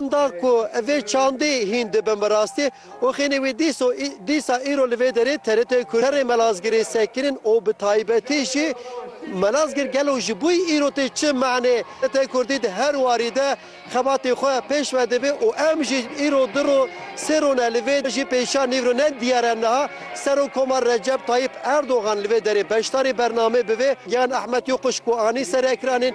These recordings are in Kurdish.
Da ku vê çandê hîn dibin bi rastî û xênê wê dîso dîsa îro li vê derê TRT'ê Kurd. Serê Melazgirê sekinîn û bi taybetî jî Melazgir gelo ji bo îro tê çi manê? TRT Kurdî di her warî de xebatê xwe pêş ve dibê û em jî îro du roj sê roj ne li vê jî pêşiya nîvro ne diyar e niha Serokomar Recep Tayîp Erdogan li vê derê beşdarê bernamê bivê. Giyan Ehmed Yokuş ku anî serekranên.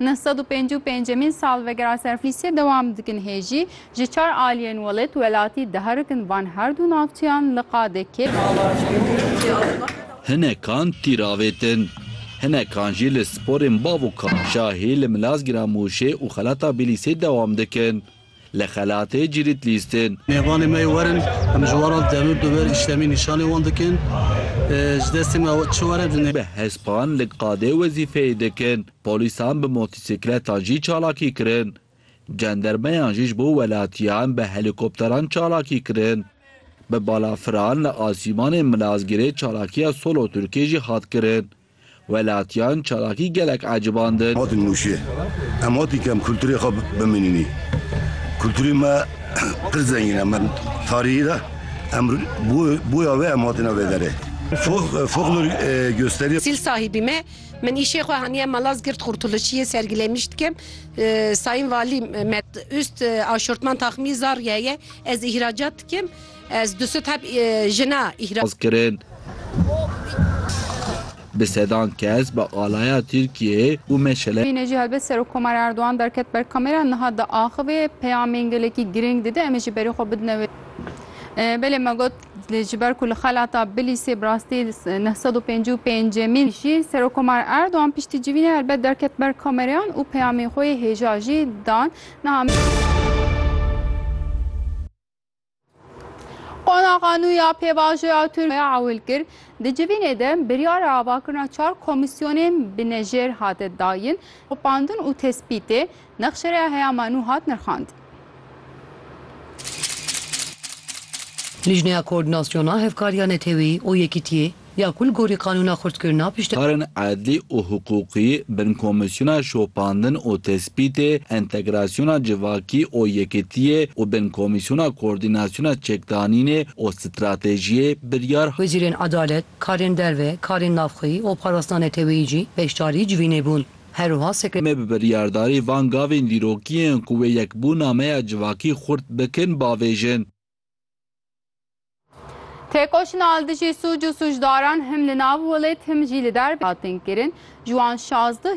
Neh sed û pêncî û pêncemîn salvegera serflîsiyê dewam dikin hê jî ji çar aliyên welêt welatî diherikin van her du navçeyan li qadê kê. Hinekan tîr avêtin. Hinekan jî li sporên bav û kaşa hê li Milazgîran Mûşê û Xelata Bîlîsê dewam dikin. Li xelatê Cirit Lîstin. Mêvanê me yê werin, em ji weran demir bi wir îşlemî nîşanê wan dikin. Ji destê me ew çi were dine. Bi hespan li qadê wezîfeyê dikin. Polîsan bi motîsikletan jî çalakî kirin. Cendermeyan jî ji bo welatiyan bi helîkopteran çalakî kirin. Bi balafiran li asîmanê Milazgirê çalakiya solo Tirkê jî hat kirin. Welatiyan çalakî gelek ecibandin. Hatin nûşê. Em hatî kem kulturê xwe bimînînî. Kulturê me pir zengîn e. Me tarîhî de em boya wê em hatine vê derê. Folklor gösteriye. Sîl sahîbî me. Min îşê xwe haniye Malaz Girt Xurtulişiyê sergîlemîş dikim. Sayîn Valî Met Ust aşortman taxmî zar ye ye. Ez îhracat dikim. Ez du sed heb jina îhra. Raz kirin. Bi sedan kes bi alaya Tirkiyeyê û meşele. Yine jî helbet Serokkomarê Erdogan derket ber kamera niha diaxivê peyamên gelekî girîng dide em ê ji berî xwe bidine wê. Belê me got ji ber ku li xelata Bilîsê bi rastî neh sed û pêncî û pêncemîn jî Serokkomar Erdogan piştî civînê helbet derket ber kamereyan û peyamên xwe yê hêja jî dan. Niha. Qonaxa nû ya pêvajoya Tirkiye ewil kir, di civînê de biryara avakirina çar komîsyonên binejêr hate dayin, xwepandin û tespîtê nexşereya heyama nû hat nirxandin. Lijneya Koordînasyona Hevkariya Neteweyî û Yekîtiyê Ya ku li gorî qanûna xurtkirina pişt. Karên edlî û hiqûqî bin komîsyona şopandin û tespîtê, entegrasyona civakî û yekitiyê û bin komîsyona koordînasyona çekdanînê û stratejiyê biryar. Wezîrên edalet, karên derve, karên navxweyî û parastina neteweyî jî beşdarî civînê bûn. Her wiha sekre. Em ê bi biryardarî van gavên dîrokî yên ku wê yekbûna me ya civakî xurt bikin bavêjin. Têkoşîna li dijî sûc û sûcdaran him li nav welêt him jî li derve hatin kirin. Ji wan şazdeh